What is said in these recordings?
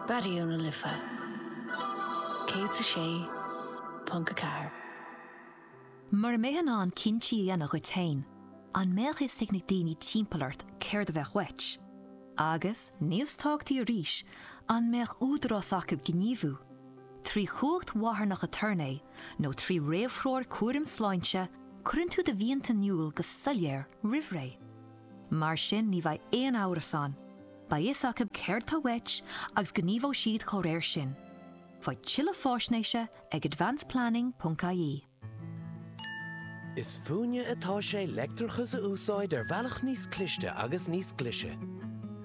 Raidió na Life 106.4. Mura mbeadh tú in ann cinntí a dhéanamh dhuit féin, an mbeadh fhios ag na daoine timpeall ort céard a bheadh uait? Agus, níos tábhachtaí arís, an mbeadh údarás acu gníomhú, trí chumhacht mharthanach aturnae nó trí réamhthreoir cúraim sláinte, cuireann tú do mhianta in iúl go soiléir roimh ré. Mar sin ní bheidh aon amhras ann. Beidh fhios acu céard tá uait agus gníomhóidh siad dá réir sin. Faigh tuilleadh fáisnéise ag advanceplanning.ie. Is fúinne atá sé leictreachas a úsáid ar bhealach níos cliste agus níos glise.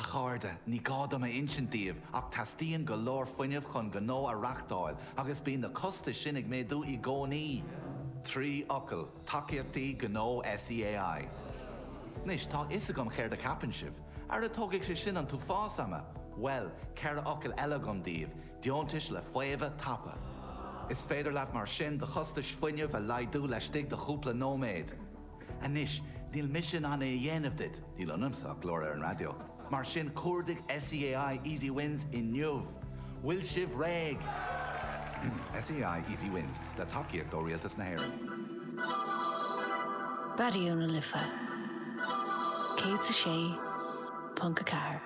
A chairde, ní gá dom a insint daoibh ach teastaíonn go leor fuinnimh chun gnó a reachtáil agus bíonn na costais sin ag méadú i gcónaí! Trí fhocal, Tacaíochtaí Gnó SEAI. Anois, tá a fhios agam céard a cheapann sibh. Ara tógfaidh sé sin an t-uafás ama! Bhuel, ceithre fhocal eile agam daoibh, Deontais le Faomhadh Tapa. Is féidir leat mar sin do chostais fuinnimh a laghdú laistigh de chúpla nóiméad. Anois, níl mise in ann é a dhéanamh duit, níl ionamsa ach glór ar an raidió, mar sin cuardaigh SEAI Easy Wins inniu! Bhfuil sibh réidh? SEAI Easy Wins, le tacaíocht ó Rialtas na hÉireann. Raidió na Life 106.4.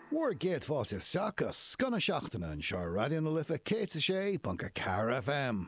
Bhur gcéad fáilte isteach go scoth na seachtaine anseo ar Raidió na Life 106.4 FM.